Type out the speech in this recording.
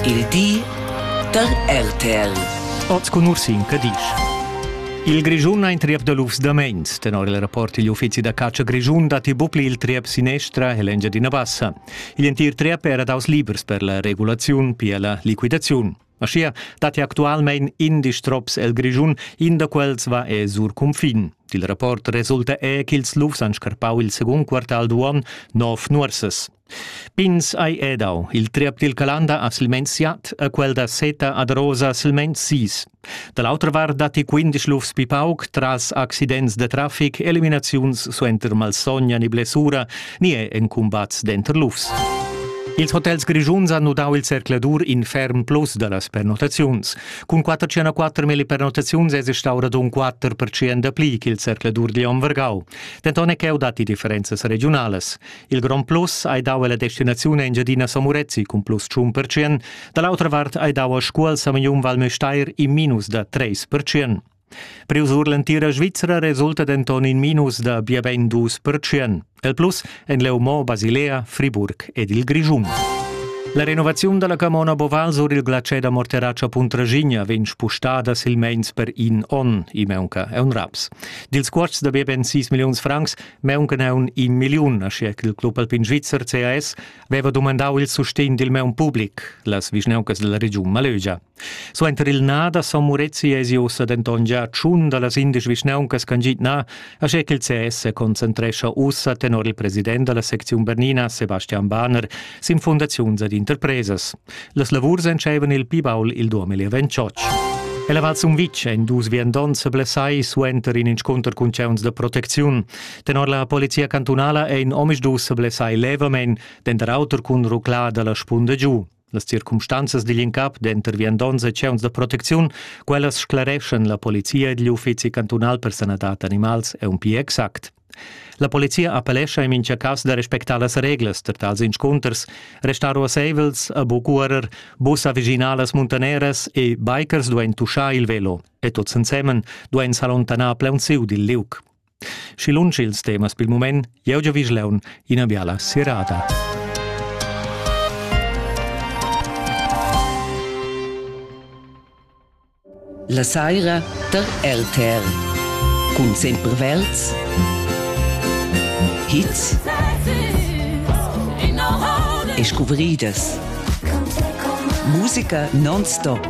Il di da RTL. Oz cun Ursin Cadisch. Il Grischun ha in triep da lufs da meins. Tenor il rapport digl uffizi da catscha grischun datti bucli il triep sinestra e l'Engiadina Bassa. Igl entir triep era daus libers per la regulaziun, pia la liquidaziun. Aschia datti actualmein indisch trops el Grischun, in da quels va e sur cunfin. Dil rapport resulta è ch'ils lufs han scarpau il secund quartal d'uon nov nuorsas. Pins ei edau. Il triep dil Calanda ha silmeins siat e quel da Seta ad Rosa silmeins sis. Da l'autra vart datti quindesch lufs pli pauc tras accidents da traffic, eliminaziuns suenter malsogna ni blessura, ni è en cumbats denter lufs. Ils hotels grischuns hanno dau il zercladur in ferm plus da las pernottaziuns. Cun 404 milli pernottaziuns es stau radun 4% dapli ch'il zercladur di Vargau. Denton è cheu datti differenzas regionalas. Il grond plus ei dau ella destinaziun Engiadina Somurezzi cun plus tschun percent, dall'autra vart ei dau a Scuol Samignun Val Müstair in minus da treis percent. Priu sur l'entira Svizzera resulta denton in minus da bia bein dus percent. Il plus en Leumo, Basilea, Friburg ed il Grischun. La renovaziun dalla camona Boval sur il glacier da Morteraccia Puntraschigna vegn spustada silmeins per in onn, i meunca è un raps. Dils cuosts da bia ben 6 milliuns francs Meunca neun in milliun, aschia ch'il club alpin svizzer CAS veva dumandau il sustegn dil meun public, las vischnauncas dalla regiun Malögia. Suenter il na da Son Murezi esi ussa denton gia tschun dallas indesch vischnauncas ch'han git na, aschia ch'il CS se concentrescha ussa tenor il president dalla secziun Bernina, Sebastian Bahner, sin fundaziuns ed interpresas. Las lavurs entscheivan il pli baul il 2028. Ella Val Sumvitg ein dus viandonts blessai suenter in inscunter cun tgeuns da protecziun. Tenor la polizia cantunala ein omisdus blessai levamein, denter auter cun ruclar dalla spunda giu. Las circumstanzas digl incap denter viandonts e tgeuns da protecziun, quellas sclareschan la polizia digl uffizi cantunal per sanadad animals e un pli exact. La polizia appellescha in mincha cas da respectar las reglas per tals inscunters, restar ruasseivels a bucurer bussa veginalas muntaneras e bikers duain tuschar il velo e tuts ensemen duain s'allontanar plaunsiu dil liug. Schi lunsch ils temas pil mument, jeu giò Vischleun ina biala sirada. La saira tar RTR cun Sempervelds hits e scuvridas musica non-stop